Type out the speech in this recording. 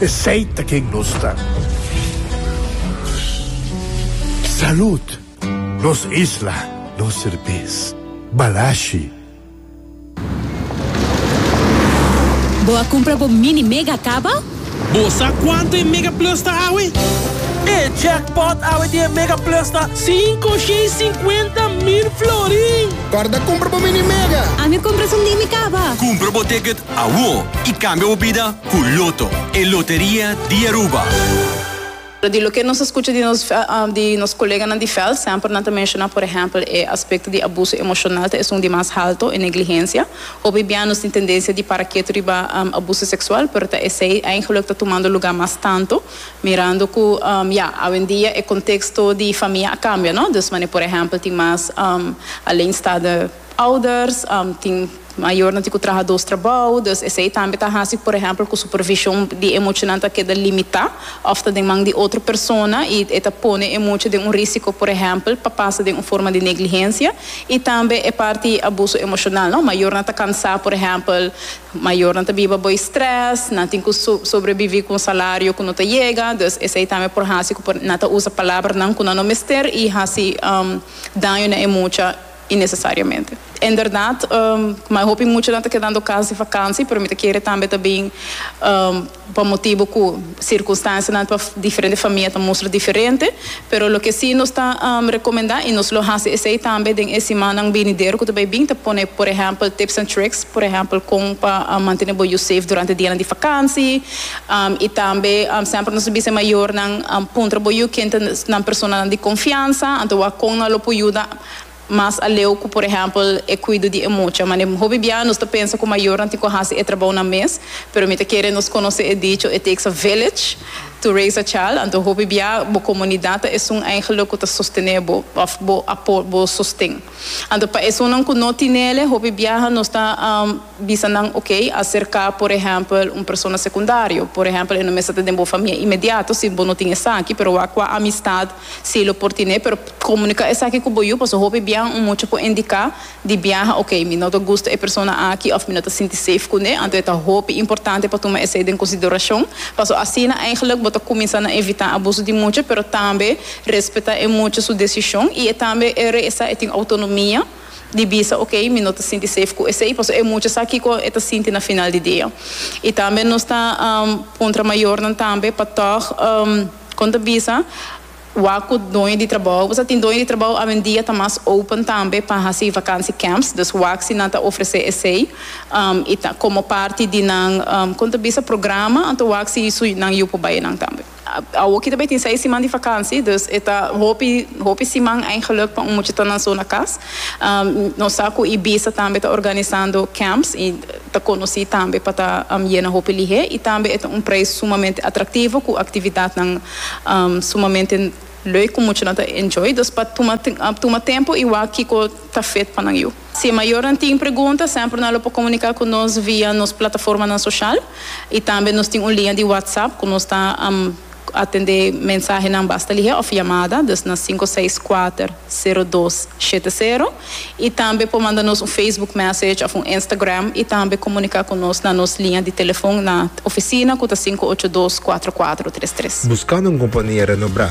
Esey ta ken nos ta. Salud! Nos isla, nos serbes. Balashi. Bo a cumpra bo mini mega caba? Bo sa cuanto e mega plus ta awe? E jackpot awe di e mega plus ta cinco shei cincuenta mil florin! Corda cumpra bo mini mega! Ami cumpra su mini caba! Cumpra bo ticket awor y cambia bo bida! Cu Lotto, e loteria di Aruba. Di loke nos a scucha di nos di nos coleganan di veld, semper nan ta menciona, por ehempel, e aspecto di abuso emocional ta esun di mas halto, e negligencia. Hopi bia nos tin tendencia di para ketu riba abuso sexual, pero ta esey eigenlijk ta tumando lugar mas tanto, mirando cu ya, awendia e contexto di famia a cambia, no? Dus mane, por ehempel, tin mas aleenstaande. Ouders, tin mayornan tin cu traha dos trabou, dus esey tambe ta haci, por ehempel, cu supervision di e muchanan ta keda limita of ta den man di otro persona y e ta pone e mucha den un risico, por ehempel, pa pasa den un forma di negligencia y tambe e parti abuso emocional, no, mayornan ta cansa, por ehempel, mayornan ta biba bo e stress, nan tin cu sobrebivi cu un salario cu no ta yega, dus esey tambe por haci cu nan ta usa palabranan cu nan no mester y haci daño na e mucha. innecesariamente. En berdad, mai hopi muchanan ta kedando cas di vakansi, pero mi ta kere tambe ta bin pa motibu cu circunstancianan pa diferente famia ta mustra diferente. Pero loke si nos ta recomenda y nos lo haci esey tambe den e simannan binidero cu ta bay bin ta pone por ehempel tips and tricks, por ehempel con pa mantene bo yu safe durante dianan di vakansi y tambe semper nos ta bisa e mayornan puntra bo yu ken ta nan personanan di confiansa anto wak con nan lo por yuda. Mas aleu cu, por ehempel, e cuido di e mucha. Mane hopi bia nos ta pensa cu mayornan tin cu haci e trabounan mes, pero mi ta kere nos conoce e dicho It takes a village to raise a child. Anto hopi bia bo comunidad ta esun eigenlijk cu ta sostene bo of bo apo bo sosten. Anto pa esunnan cu no tinele, hopi biaha nos ta. Bisa nan ok acerca por ehempel un persona secundario, por ehempel e no mester ta den bo famia inmediato si bo no tin esaki, pero wak cua amistad si lo por tine, pero comunica esaki cu bo yu, pasobra hopi biaha un mucha por indica di biaha ok mi no ta gusto e persona aki of mi no ta sinti safe cu ne, anto e ta hopi importante pa tuma esey den consideracion, pasobra asina eigenlijk bo ta cuminsa na evita abuso di mucha, pero tambe respeta e mucha su decision y e tambe e regresa e tin autonomia. di bisa ok mi no ta sinti safe cu esey pasobra e mucha sa kico e ta sinti na final di dia y tambe nos ta puntra mayornan tambe pa tog con ta bisa wak cu doño di trabao pasobra tin doño di trabao awendia ta mas open tambe pa haci vakantie camps dus wak si nan ta ofrece esey y ta como parti di nan con ta bisa programa anto wak si su nan yu por bay nan tambe. Awor ki ta bay tin seis siman di vakansi, dus e ta hopi hopi siman eigenlijk pa un mucha ta nan zona cas. Nos sa cu Ibiza tambe ta organisando camps y ta conoci tambe pa ta yena hopi lihe y tambe e ta un prijs sumamente atractivo cu actividadnan sumamente leuk cu muchanan ta enjoy. Dus pa tuma tuma tempo y wak kico ta fit pa nan yu. Si e mayornan tin pregunta, semper nan lo por comunica cu nos via nos plataformanan social y tambe nos tin un linea di WhatsApp cu nos ta atende mensahenan basta lihe of yamada, dus na sinku seis kuater sero dos shete sero, y tambe por manda nos un Facebook message of un Instagram y tambe comunica cu nos na nos linea di telefon na oficina cu ta sinku ocho dos kuater kuater tres tres. Buscando un compania renobrá.